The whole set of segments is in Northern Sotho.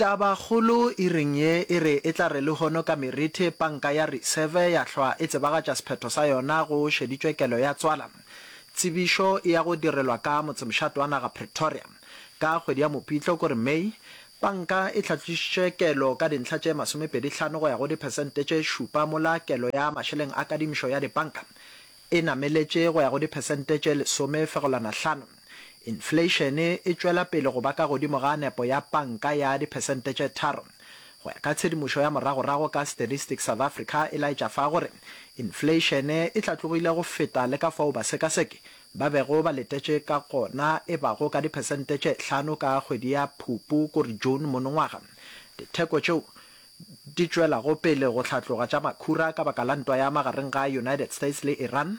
Tabakgolo e reng ye e re e tla re lehono ka Merethe panka ya Reserve ya hlwa e tsebagatša sephetho sa yona go šeditšwe kelo ya tswala. Tsebišo e ya go direlwa ka motsemšato wa naga Pretoria. Ka kgwedi ya Mopitlo, ko re May, panka e tlhatlošitše kelo ka dintlha tše masomepedi hlano go ya go diphesente tše šupa mola kelo ya mašeleng a kadimišo ya dipanka e nameletše go ya go diphesente tše lesome fegelwana hlano. Infleišene e tšwela pele go ba ka godimo ga nepo ya panka ya diphesente tše tharo, go ya ka tshedimošo ya moragorago ka Statistics South Africa e laetša fa gore infleišene e hlatlogile go feta le ka fao basekaseki ba bego ba letetše ka gona e bago ka diphesente tše hlano ka kgwedi ya Phupu kore June monongwaga. Ditheko tšeo di tšwelago pele go hlatloga tša makhura ka baka la ntwa ya magareng ga United States le Iran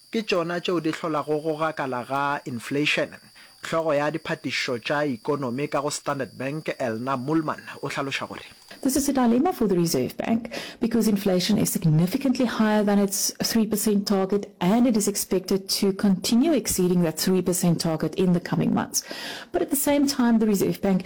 Ke tšona tšeo di hlolago go gakala ga inflation. Hlogo ya diphatišišo tša ikonomi ka go Standard Bank, Elna Moolman, o hlaloša gore. This is a dilemma for the Reserve Bank because inflation is significantly higher than its three percent target and it is expected to continue exceeding that three percent target in the coming months. But at the same time, the Reserve Bank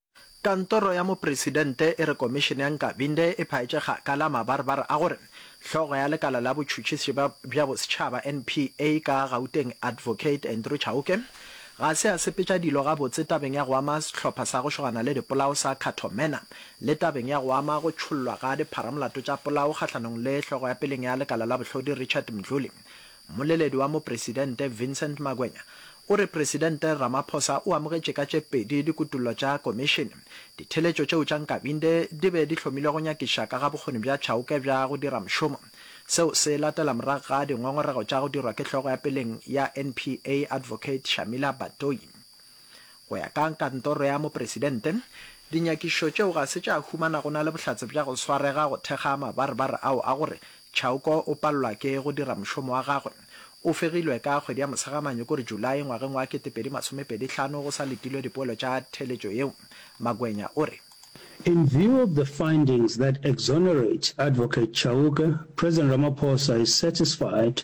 Kantoro ya Mopresidente e re Komišene ya Nkabinde e phaetše kgakala mabarbar a gore hlogo ya lekala la botšhutšisi bja bosetšhaba, NPA, ka Gauteng Advocate Andrew Chauke ga se a sepetša dilo gabotse tabeng ya go ama sehlopha sa go šogana le dipolao sa Cato Manor le tabeng ya go ama go tšhollwa ga dipharamolato tša polao kgahlanong le hlogo ya peleng ya lekala la bohlodi Richard Mdluli Mmoleledi wa Mopresidente Vincent Magwenya o re Presidente Ramaphosa o amogetše ka tše pedi dikutollo tša Komišene, ditheeletšo tšeo tša Nkabinde di be di hlomilwe go nyakiša ka ga bokgoni bja Chauke bja go dira mošomo. Seo se latela morago ga dingongorego tša go dirwa ke hlogo ya peleng ya NPA Advocate Shamila Batoyi. Go ya ka Kantoro ya Mopresidente, dinyakišo tšeo ga se tša humana go na le bohlatse bja go swarega go thekga mabarebare ao a gore Chauke o palelwa ke go dira mošomo wa gagwe. O fegilwe ka kgwedi ya Mosegamane, ko re July, ngwageng wa 2025 go sa letilwe dipoelo tša theeletšo yeo, Magwenya o re. In view of the findings that exonerate Advocate Chauke, President Ramaphosa is satisfied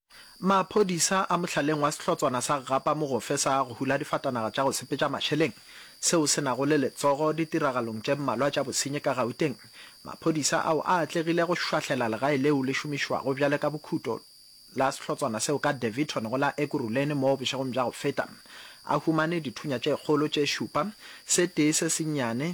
Maphodisa a mohlaleng wa sehlotswana sa Gapa Mogofe sa go hula difatanaga tša go sepetša mašeleng seo se nago le letsogo ditiragalong tše mmalwa tša bosenyi ka Gauteng. Maphodisa ao a atlegile go šwahlela legae leo le šomišwago bjale ka bokhuto la sehlotswana seo ka Daveyton go la Ekurhuleni mo bošegong bja go feta. A humane dithunya tše kgolo tše šupa, se tee se sennyane,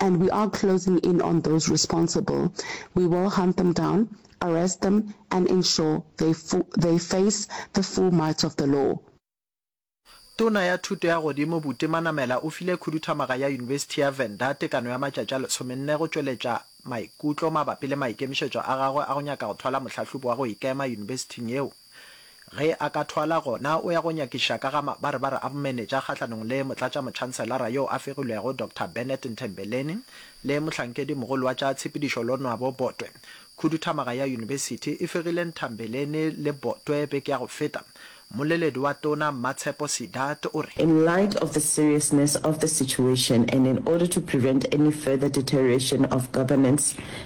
and we are closing in on those responsible, we will hunt them down, arrest them and ensure they they face the full might of the law. Tona ya Thuto ya Godimo Buti Manamela o file khuduthamaga ya Yunibesithi ya Venda tekano ya matšatši a lesomenne go tšweletša maikutlo mabapi le maikemišetšo a gagwe a go nyaka go thwala mohlahlobi wa go ikema yunibesithing yeo. Ge a ka thwala, gona o ya go nyakiša ka ga mabarebare a bomenetša kgahlanong le Motlatšamotšhanselara yo a fegilwego Doctor Bennett Nthembeleni le mohlankedimogolo wa tša tshepedišo Lonwabo Botwe. Khuduthamaga ya yunibesithi e fegile Nthambeleni le Botwe beke ya go feta. Mmoleledi wa Tona Mmatshepo Seedat o re. In light of the seriousness of the situation and in order to prevent any further deterioration of governance,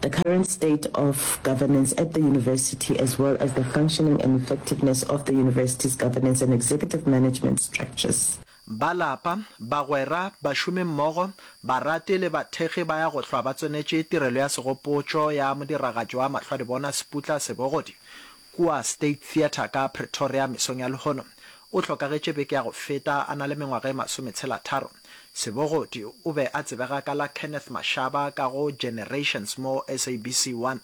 The current state of governance at the university as well as the functioning and effectiveness of the university's governance and executive management structures. Ba lapa, bagwera, bašomimmogo, barati le bathekgi ba ya go hlwa ba tswenetše tirelo ya segopotšo ya modiragatši wa mahlwadibona Seputla Sebogodi kua State Theatre ka Pretoria mesong ya lehono. O hlokagetše beke ya go feta a na le mengwaga e masometshela-tharo. Sebogodi o be a tsebega ka la Kenneth Mashaba ka go Generations mo SABC 1.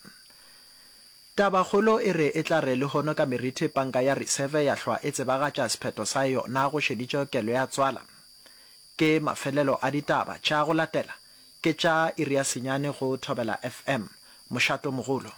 Tabakgolo e re e tla re lehono ka meriti Panka ya Reserve ya hlwa e tsebagatša sephetho sa yona go šeditšwe kelo ya tswala. Ke mafelelo a ditaba tša go latela ke tša iri ya senyane go Thobela FM. Mošato mogolo.